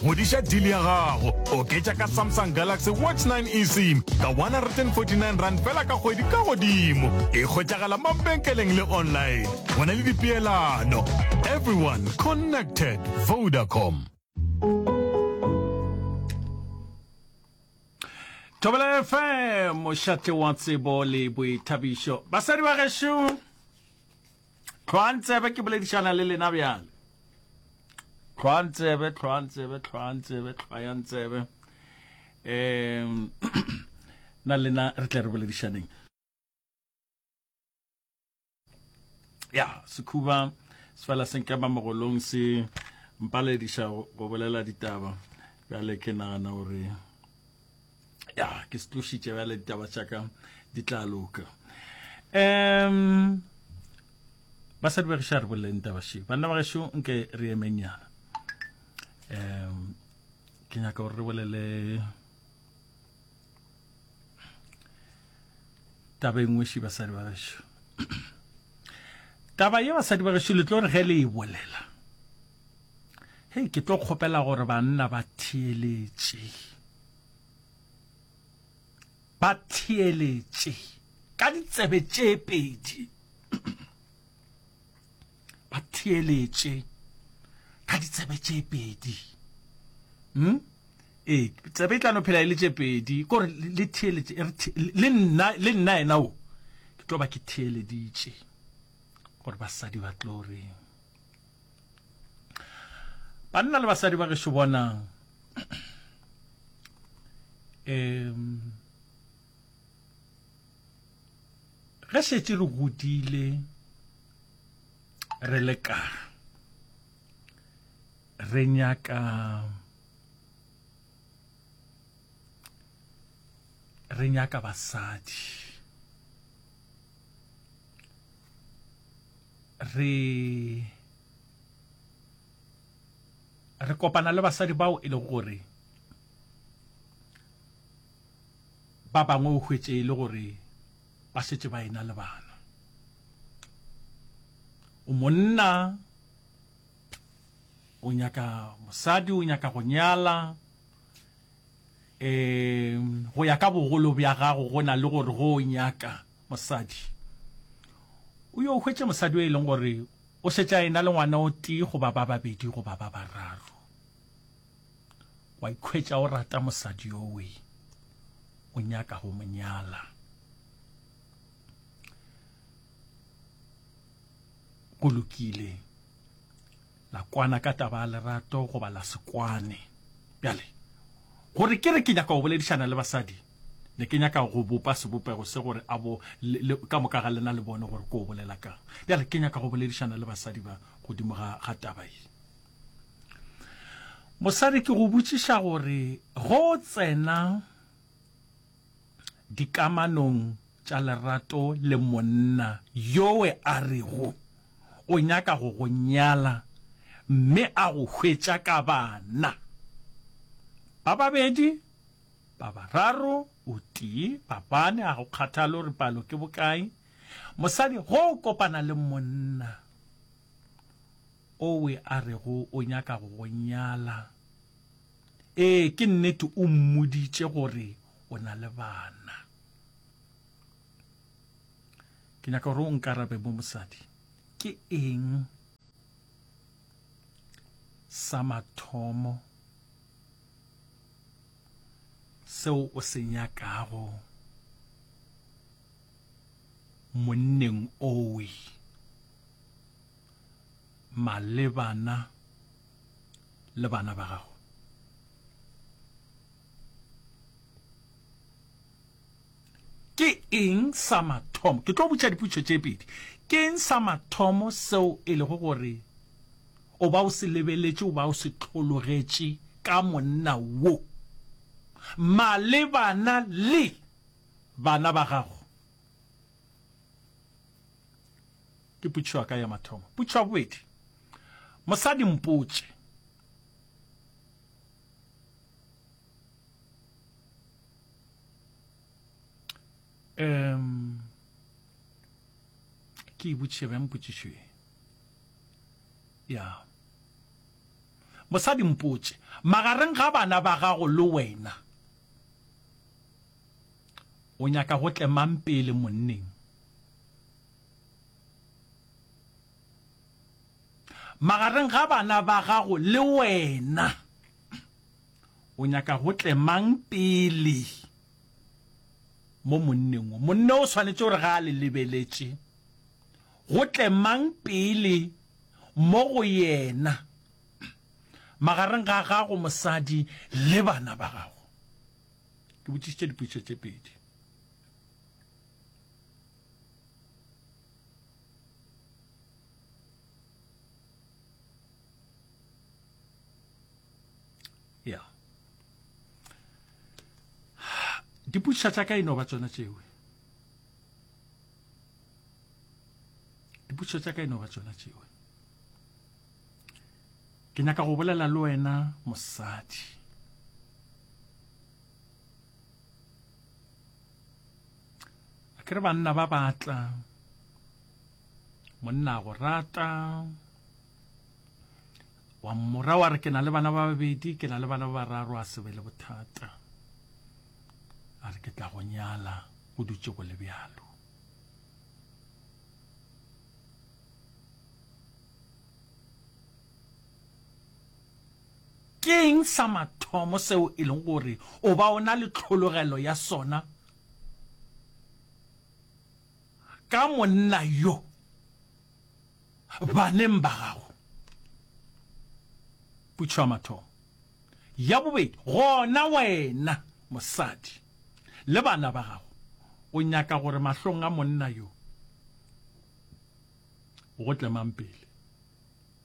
Ngwediša deal ya gago. Oketša ka Samsung Galaxy Watch 9 eSIM ka 149 rand fela ka kgwedi ka godimo. E hwetšagala mabenkeleng le online. Go na le dipeelano. Everyone connected. Vodacom. Thobela FM, mošate wa tsebo le boithabišo. Basadi ba gešo! Tlhoang tsebe ke boledišana le lena bjale. Tlhoang tsebe, tlhoang tsebe, tlhoang tsebe, tlhoang tsebe. Um, na lena re tle re boledišaneng. Ya, sekhuba se fela se nkema mogolong se mpalediša go bolela ditaba. Bjale ke nagana gore ya ke se tlošitše bjale ditaba tša ka di tla loka um basadi ba gešo a re boleleng taba šeo banna ba gešo nke re emengyana um ke nyaka gore re bolele taba e nngwe še basadi ba gešo taba ye basadi ba gešo le tlo re ge le e bolela hei ke tlo kgopela gore banna ba theeletše ba theeletše ka ditsebe tše pedi ba theeletše ka ditsebe tše pedi hm ee tsebe e tlano phela e le tše pedi kore le theeletše le nna le nna ena o ke tlo ba ke theeleditše gore basadi ba tlo reng banna le basadi ba gešo bonang um ge šetse re godile re le ka re nyaka re nyaka basadi re re kopana le basadi bao e le gore ba bangwe o hwetše e le gore ba šetše ba ena le bana o monna o nyaka mosadi o nyaka go nyala um go ya ka bogolo bja gago go na le gore go o nyaka Mosadi. O yo hwetše mosadi yo e leng gore o šetše a ena le ngwana o tee goba ba babedi goba ba bararo. Wa ikhwetša o rata mosadi yowe, o nyaka go mo nyala. Go lokile. La kwana ka taba ya lerato goba la se kwane. Bjale, gore ke re ke nyaka go boledišana le basadi, ne ke nyaka go bopa sebopego se gore a bo le, le, ka moka ga lena le bone gore ke o bolela kang. Bjale ke nyaka go boledišana le basadi ba godimo ga, ga taba ye. Mosadi, ke go botšiša gore ge o tsena dikamanong tša lerato le monna yowe a rego o nyaka go go nyala mme a go hwetša ka bana ba babedi, ba bararo, o tee, ba bane, ga go kgathale gore palo ke bokae, mosadi ge o kopana le monna owe a rego o nyaka go go nyala, ee, ke nnete o mmoditše gore o na le bana ke nyaka gore o nkarabe mo mosadi ke eng sa mathomo seo o se nyakago monneng owe malebana le bana ba gago Ke eng sa mathomo? Ke tlo botša dipotšo tše pedi. Ke eng sa mathomo seo e lego gore o ba o se lebeletše, o ba o se hlologetše ka monna wo malebana le bana ba gago? Ke potšo ya ka ya mathomo. Potšo ya bobedi, mosadi mpotše, um ke ibotšiše bjang potšišo ye ya mosadi mpotše magareng ga bana ba gago le wena o nyaka go tlemang pele monneng Magareng ga bana ba gago le wena, o nyaka go tle mang pele mo monneng wo? Monne o swanetše gore ga a le lebeletše, go tle mang pele mo go yena magareng ga gago mosadi le bana ba gago? Ke botšišitše dipotšišo tše pedi. ya dipuša tša ka e no ba tsona tšeo dipuša tša ka e no ba tsona tšeo ke nyaka go bolela le wena mosadi a ke re banna ba batla monna go rata wa mmora wa re ke na le bana ba babedi ke na le bana ba bararo a sebe le bothata a re ke tla go nyala go dutse go le bjalo keng sa mathomo seo e leng gore o ba o na le tlhologelo ya sona Ka monna yo, baneng ba gago. Putšo ya mathomo. Ya bobedi, gona wena mosadi le bana ba gago o nyaka gore mahlong a monna yo go tle mang pele?